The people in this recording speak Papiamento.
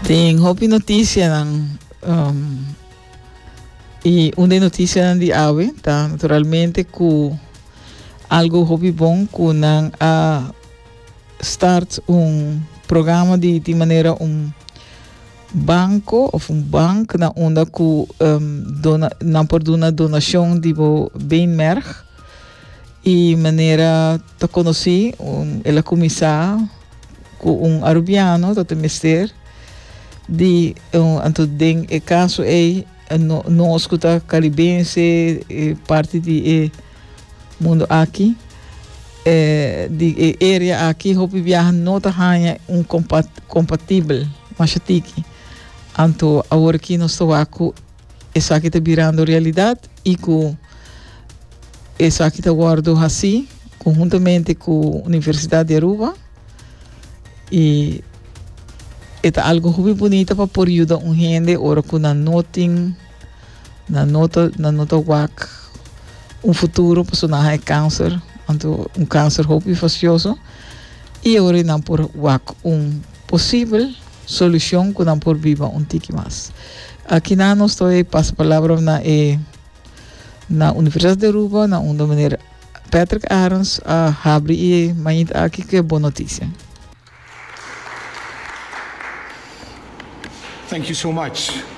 Tin hopi noticianan um, y un de noticianan di awe ta naturalmente cu algo hopi bon cu nan a start un programa di di manera un banco of un bank na unda cu um, dona, nan por duna donacion di bo beenmerg y manera Ta conoci un el a cuminsa cu un Arubiano ta ta mester di anto den e caso ey no nos cu ta Caribense e parti di e mundo aki di e area aki hopi biaha no ta haya un compa compatibel mashatiky anto awor aki nos ta wak cu Esaki ta birando realidad y cu esaki ta wordo haci conjuntamente cu Universidad di Aruba y e ta algo hopi bunita pa por yuda un hende ora cu nan no tin, nan no ta, nan no ta wak un futuro pasobra nan haña cancer, anto un cancer hopi fastioso y awor e nan por wak un posibel. Solucion cu nan por biba un tiki mas. Aki nan nos ta oye pasa palabra na e na Universidad de Aruba na unda Meneer Patrick Arons a habri e mañit aki cu e bon noticia. Thank you so much.